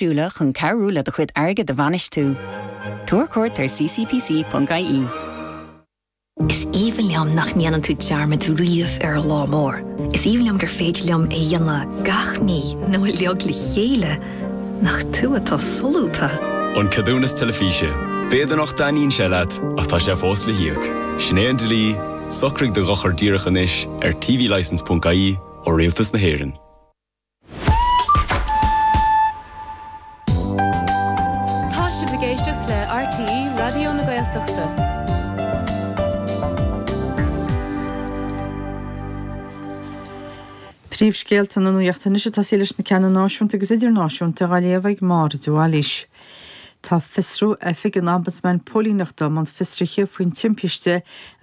Dúile chun cabhrú le do chuid airgid a bhainistiú. Tabhair cuairt ar ccpc.ie. Is aoibhinn liom nach ndéanann tú dearmad riamh ar an lá mór. Is aoibhinn liom gur féidir liom é dhéanamh gach mí nó uilig le chéile, nach tú atá solúbtha! An Ceadúnas Teilifíse, B'fhéidir nach dtaitníonn sé leat, ach tá sé fós le híoc. Sin é an dlí, socraigh do dhochar díreach anois ar tvlicence.ie ó Rialtas na hÉireann. Tá sibh ag éisteacht le RTÉ Raidió na Gaeltachta. Príomhscéalta na nuachta anois ag tosaí leis na ceanna náisiúnta agus idirnáisiúnta á léamh ag Máire de Bhailís. Tá Fiosrú Oifig an Ombudsman Póilíneachta i mbun fiosruithe faoin timpiste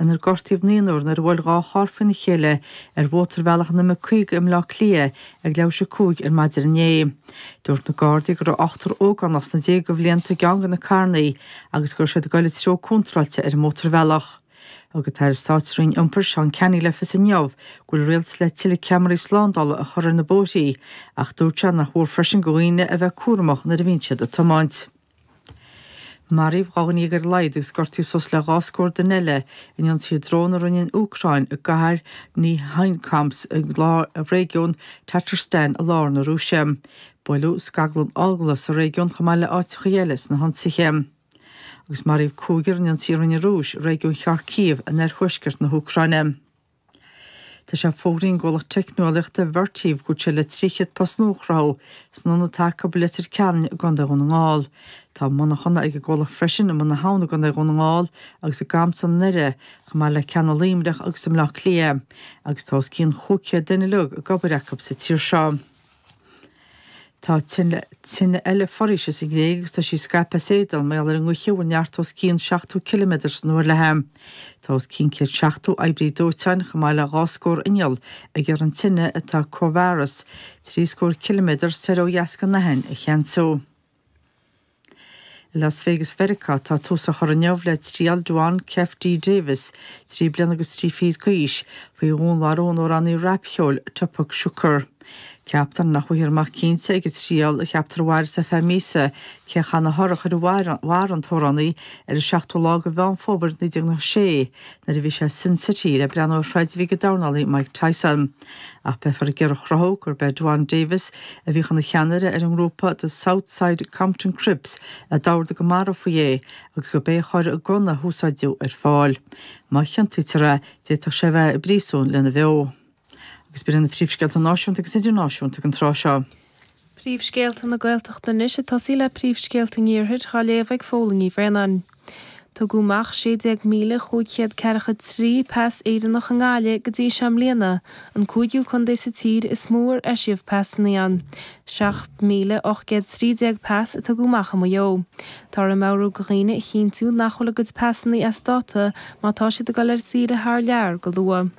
inar gortaíodh naonúr nuair a bhuail dhá charr faoina chéile ar mhótarbhealach an M50 i mBleá Cliath ag leathuair théis a cúig ar maidin inné. Dúirt na Gardaí go raibh ochtar ógánach sna déaga de bhlianta i gceann de na carrannaí agus go raibh siad ag dul an treo contráilte ar an mótarbhealach. Thug an tAire Stáit sa Roinn Iompair, Seán Canney le fios inniu go bhfuil an Rialtas le tuilleadh ceamaraí slándála a chur ar na bóithrí ach dúirt sé nár mhór freisin do dhaoine a bheith cúramach nuair a bhíonn siad ag tiomáint. Maraíodh dhá dhuine dhéag ar a laghad agus gortaíodh suas le dhá scór duine eile in ionsaithe drón a rinne an Úcráin i gcathair Nizhnekamsk i lár réigiún Tatarstan i lár na Rúise. Buaileadh scaglann ola sa réigiún chomh maith le áiteachaí eile sna hionsaithe. agus maraíodh cúigear in ionsaí a rinne an Rúis i réigiún Kharkiv in oirthuaisceart na hÚcráine. Tá sé fógraithe ag an gcomhlacht teicneolaíochta Vertiv go bhfuil sé le 300 post nua a chruthú san ionad atá acu i Leitir Ceanainn i gContae Dhún na nGall. Tá monarchana ag an gcomhlacht freisin i mBun na hAbhann i gContae Dhún na nGall agus i gCamsa i nDoire chomh maith le ceanna i Luimneach agus i mBleá Cliath agus tá os cionn 500 duine uilig ag obair acu sa tír seo. Tá tine eile foraoise sa Ghréig agus tá sí ag scaipeadh as éadan mar gheall ar an ngaoth a bhfuil neart os cionn 70 ciliméadar san uair léithi. Tá os cionn 170 oibrí dóiteáin, chomh maith le dhá scór inneall, ag iarraidh an tine, atá corradh is trí scór ciliméadar soir ó dheas den Aithin, a cheansú. I Las Vegas Mheiriceá tá tús á chur inniu le triail Duane Keffe D Davis, trí bliana agus trí fichid d'aois, faoi dhúnmharú an amhránaí rapcheoil Tupac Shakur. Ceaptar nach bhfaighfear amach cinnte ag an triail a cheaptar a mhairfeas ar feadh míosa cé a chaith an t-urchar a mharaigh an t-amhránaí ar an seachtú lá de Mheán Fómhair 1996 nuair a bhí sé i Sin City le breathnú ar throid a bhí ag an dornálaí Mike Tyson. Ach beifear ag iarraidh a chruthú gurb é Duane Davis, a bhíodh ina cheannaire ar an ngrúpa The South Side Compton Crips, a d'ordaigh go marfaí é agus gurb é a chuir an gunna a húsáideadh ar fáil. Má chiontaítear é, d'fhéadfadh sé a bheith i bpríosún lena bheo. Agus b'in iad na príomhscéalta náisiúnta agus idirnáisiúnta ag an tráth seo. Príomhscéalta na Gaeltachta anois ag tosaí le príomhscéalta an Iarthair dhá léamh ag Fódhla Ní Bhraonáin. Tugadh amach 16,543 pas Éireannach i nGaillimh go dtí seo i mbliana, an cúigiú contae sa tír is mó ar eisíodh pasanna ann, 7,813 pas a tugadh amach i Maigh Eo. Táthar ag meabhrú go dhaoine a chinntiú nach bhfuil a gcuid pasanna as dáta má tá siad ag dul ar saoire thar lear go luath.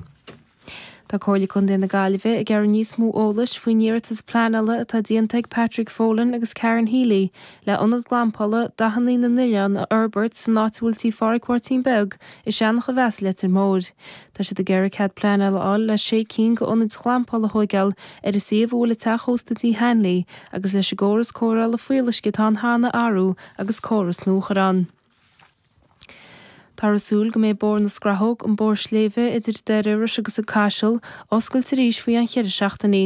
Tá Comhairle Contae na Gaillimhe ag iarraidh níos mó eolais faoin iarratas pleanála atá déanta ag Patrick Folan agus Karen Healy le ionad glampála Dathannaí na nOileán a fhorbairt san áit a bhfuil tí Pháraic Mháirtín Beag i Seanachomheas Leitir Móir. Tá siad ag iarraidh cead pleanála a fháil le sé cinn go ionaid ghlampála a thóigeáil ar an suíomh a bhfuil an teach ósta Tí Hanley agus leis an gcóras cóireála fuíolluisce atá ann cheana a athrú agus córas nua a chur ann. Táthar ag súil go mbeidh bóthar na Scrathóg, an bóthar sléibhe idir Doire Iorrais agus An Caiseal, oscailte arís faoi cheann cheithre seachtainí.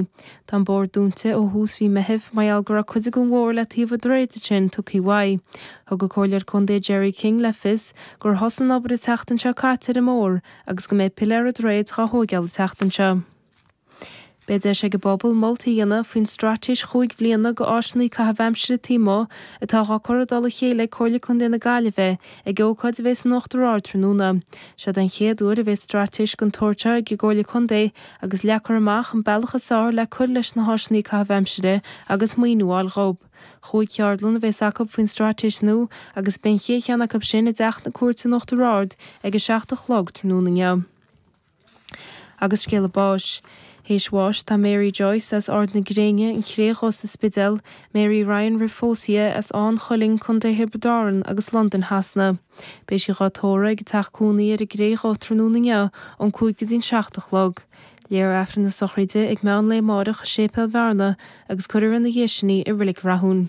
Tá an bóthar dúnta ó thús mhí Meithimh mar gheall go raibh cuid den bhóthar le taobh an droichid ansin, tugthaí uaidh. Thug an Comhairleoir Contae Gerry King le fios gur thosaigh an obair an tseachtain seo caite ar an mbóthar agus go mbeidh piléar an droichid dhá thóigeáil an tseachtain seo. Beidh deis ag an bpobal moltaí a dhéanamh faoin straitéis chúig bliana go Áiseanna Caitheamh Aimsire taobh amuigh atá dhá cur i dtoll a chéile ag Comhairle Contae na Gaillimhe ag ócáid a bheidh san Uachtar Ard tráthnóna. Seod é an chéad uair a bheidh straitéis den tsórt seo ag an gComhairle Contae agus leagfar amach an bealach is fearr le cur leis na hÁiseanna Caitheamh Aimsire agus maoiniú a fháil dhób. Chúig cheardlann a bheas acu faoin straitéis nua agus beidh an chéad cheann acu sin i dTeach na Cúirte san Uachtar Ard ag a seacht a chlog tráthnóna inniu. Agus scéala báis. Théis bháis tá Mary Joyce as Ard na Gréine, An Chré Dhubh sa Spidéal, Mary Ryan roimh phósadh di as Áth an Chuilinn, Co Thiobraid Árann agus Londain Shasana. Beidh sí dhá tórradh ag a teach cónaí ar an gCré Dhubh tráthnóna inniu ón 5 go dtí'n 7 a chlog. Léifear Aifreann na sochraide ag meán lae amáireach i Séipéal Bhearna agus cuirfear ina dhiaidh sin í i Reilig Rathúin.